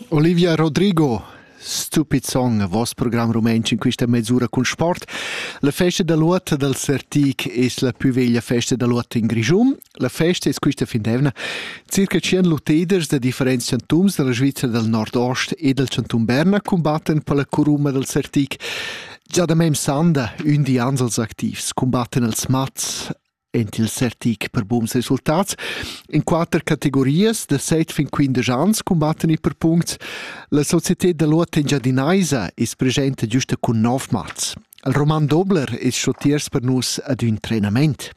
Olivia Rodrigo stupid song voss program rumantsch in questa mezz'ura cun sport. La festa da luot dal Sertic es la pü veglia festa da luot in Grischun. La festa es questa fin d'eivna circa 100 luteders da differents chantuns dalla Svizzera dal Nordost e dal Chantun Berna cumbatten per la curuma dal Sertic. Già da mem sanda, ün di ans als activs, cumbatten als mats, ent il sertic per buns resultats. In quater categorias da set fin quindesch ans combatten i per punct. La società da l'Uot Engiadinaisa is presenta giusta cun nov mats. Il Roman Dobler is schotiers per nus ad un trenament.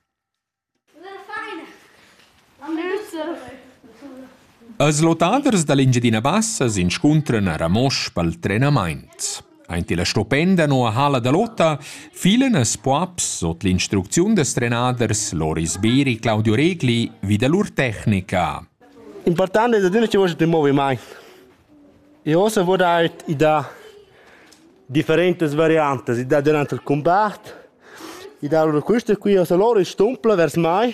Els lottaders da l'Engiadina Bassa s'inscuntran a Ramosch pel trenamaint. Aint illa stupenda noua halla da lotta filan els poaps sot l'instrucziun dels trenaders Loris Beri e Claudio Regli vi da lur tecnica. Important es adüna chi voschet ün movimaint. E ossa voul eir i dà differentas variantas. I dà dürant il cumbat, i dà lur quista qui, ossa lur stumpla vers mai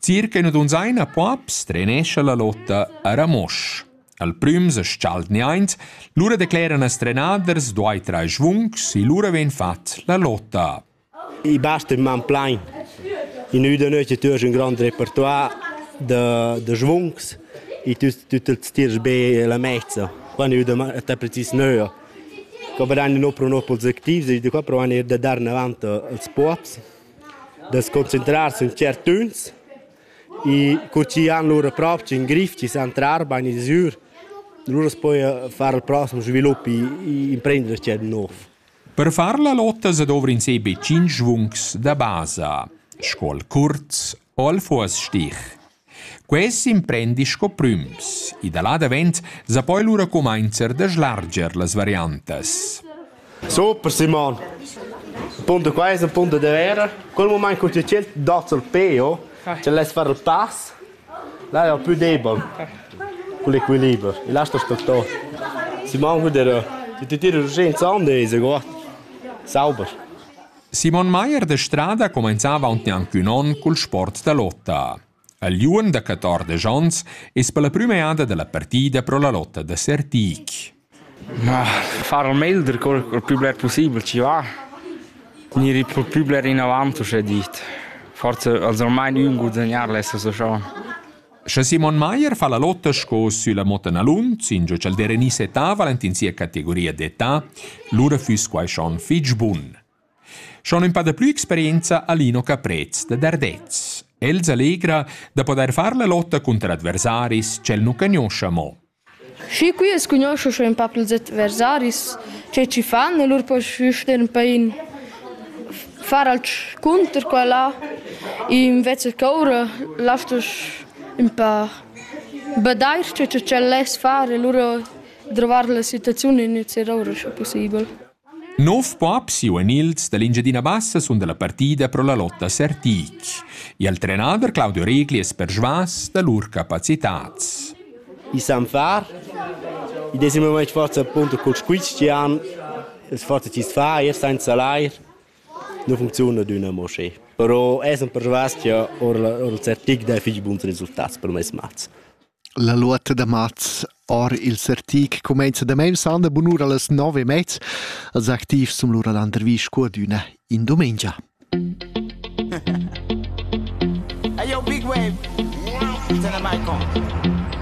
Circa ina dunzaina pops trenescha la lotta a Ramosch. Al prüm se schalt niaint, lura decleran as trenaders duai trai schvuncs e lura vegn fat la lotta. I basta in man plain. In üda noite tu hast un grand repertoire de, de schvuncs e tu, tu te tirs be la mezza quando io te precis neuo. Che veranno no pro no pels activi, e da qua provano er da dar avanti als pops. da sconcentrar sün tschertüns e cur chi han lura propcha ün grif chi san trar bain ils ür, lura poi far il prossem svilup e imprender tschert nouv. Per far la lotta sa dovr'ins be tschinch vungs da basa, Scuol curz o al fuos-stich. Quei s'imprendi sco prüms, e da là davent sa poi lura cumainzer da slarger las variantas. Super Simon! Punto qua es un punto de vera. Quel moment che tu c'è dato il peo, ce l'hai far tas, là è più debol con l'equilibrio. E lascia struttore. Simon, vedere, ti ti tiri urgenza on deze, guarda. Sauber. Simon Maier de Strada comenzava aunc gnanc ün on cul sport da lotta. Al liuon da 14 ons es per la prüma eada dalla partida pro la lotta da Sertic. Ah, far il meglio col, col più bler possibile ci va. Gniri più più bler in avanti, c'è dit. Forse also ormai ün guadagnare adesso so schon. Sche Simon Mayer fa la lotta sco sülla Motenalun, singio cha'l Derini settava in sia categoria d'età, lura füss quai schon fich bun. Schon ün pa da plü experienza ha Lino Caprez da Dardez. Els allegra da podair far la lotta cunter adversaris ch'el nu cagnoscha mo. Schi qui as cugnuoscha sco ün pap ils adversaris, che chi fan, e lur pos sten per in far alch cunter quella. Invece ch'oura lastasch ün pa badair che ch'el less far e lura drovar la situaziun in ün zer oura scu pussibel. Nov bab siu en ils dall'Engiadina Bassa sun dalla partida pro la lotta Sertig. Il trenader Claudio Regli es persvas da lur capacitats. I san far. I desi momaint forza appunto col squizchian. Es forza chi's fa eir sainza l'air. Nu funcziuna d'üna mo schi. Però es persvas cha or il Sertig dà fich buns resultats per meis mats. La luotta da mats or il sartic cumainza damaun sanda bunura las nov e mez. Els activs sun lura l'intervista cu ad üna in dumengia. Hey yo, Big Wave, turn the mic on.